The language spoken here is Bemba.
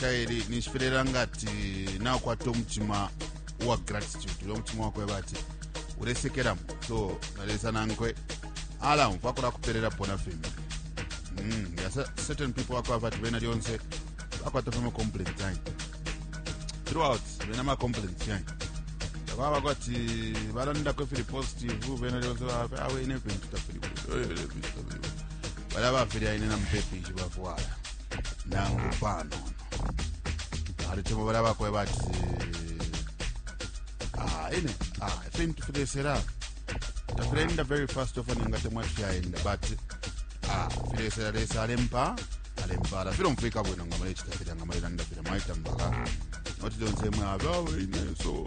kaili ninshi filelanga ati nakwata omutima uwa gratitude ule omutima wakweba ati ulesekelamo so na lesa nankwe ala umfwa kulakupererapo na fimbi mm, ya cer- certain people wakwava ati bena lyonse bakwata fama complaint yanyi throughout bena ma complaint yanyi baba kwati balandako ifili positive bena lyonse bafe awe ine vintu tafili bwino, eh, ine vintu tafili bwino." balya bafilya ine na mupepi nshi bafwala nangu panono ali chimo balya bakweba ati ah, ine ah, ifintu filesera tafilaenda very fast ofana nga temwa tifyaenda but ah, filesera lesa alempa alempala filomfwika bwino nga mulechita filya nga mulelanda filya mwaita mpaka noti lyonse mwe abawe ine so